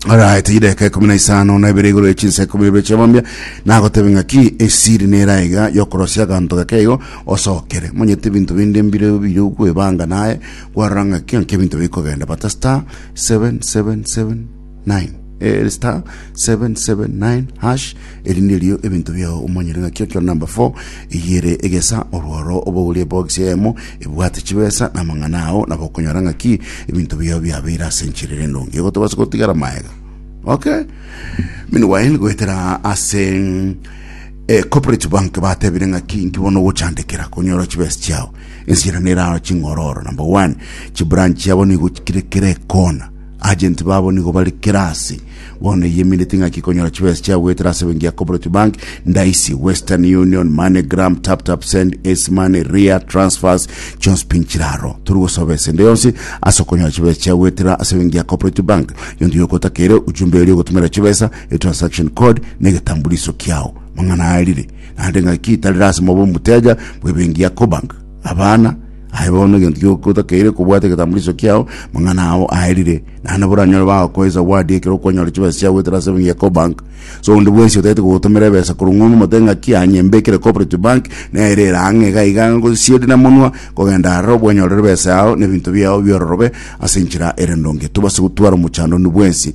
Araete chidaka ekumi na isano na ibere igoro echinsa ekumi na ibere chiamambia nagotebe ng'aki esiri nera iga yokorosia aganto gake igo osokere monyete ebinto binde mbire bire kwebanga naye kwarora ng'aki ng'aki ebinto bikogenda bata star 7779 eh, star 779 hash Eri nderio ebinto biao omanyere ng'aki ekero number four eyio ere egesa orworo obogori ebox eyemo ebwate chibesa na amang'ana ao nabo okonyora ng'aki ebinto biao biabeire ase enchera ere endonge igo tobasa gotigara maega okay meanwhile goetera ase eh, corporate bank batebire ng'aki inki bono ogochandekera konyora chibesa chiao ensiera neraro ching'ororo number one chibranch chiabo nigo kire kere kona Agenti babo nigo bare kera ase. Bono eyiamineti ng'aki konyora chibesa chia goetera ase benki ya Cooperative Bank, Ndaisi, Western Union, MoneyGram, TapTapSend, Ace Money, Ria, Transfers, chionsi pi nchiraro. Tori gosoba esende yonsi ase okonyora chibesa chia goetera ase benki ya Cooperative Bank. Gionto gioka otakeire ujumbe eria ogotomerera chibesa, etransaction code, na egetambuliso kiao. Mang'ana aya rire naende ng'aki tarire ase mobe omoteja bw'ebenki ya Cobank. Abana, aye bono egento gioka otakeire kobwata egetambulisho kiao, mang'ana ao aerire. Naende boranyore bagokoe zawadi ekero okonyora chibesa chiao goetera ase ebenki ya Cobank. Ase onde bwensi otagete kogotomera ebesa korwa ng'ongo mote ng'aki anye mbekere Cooperative Bank nere ere ang'e iga iga ngosisieri na monwa kogenda aroro obwanyorere ebesa yao na ebinto biao biororobe ase enchera ere ndonge. Tobase gotwara omochando onde bwensi.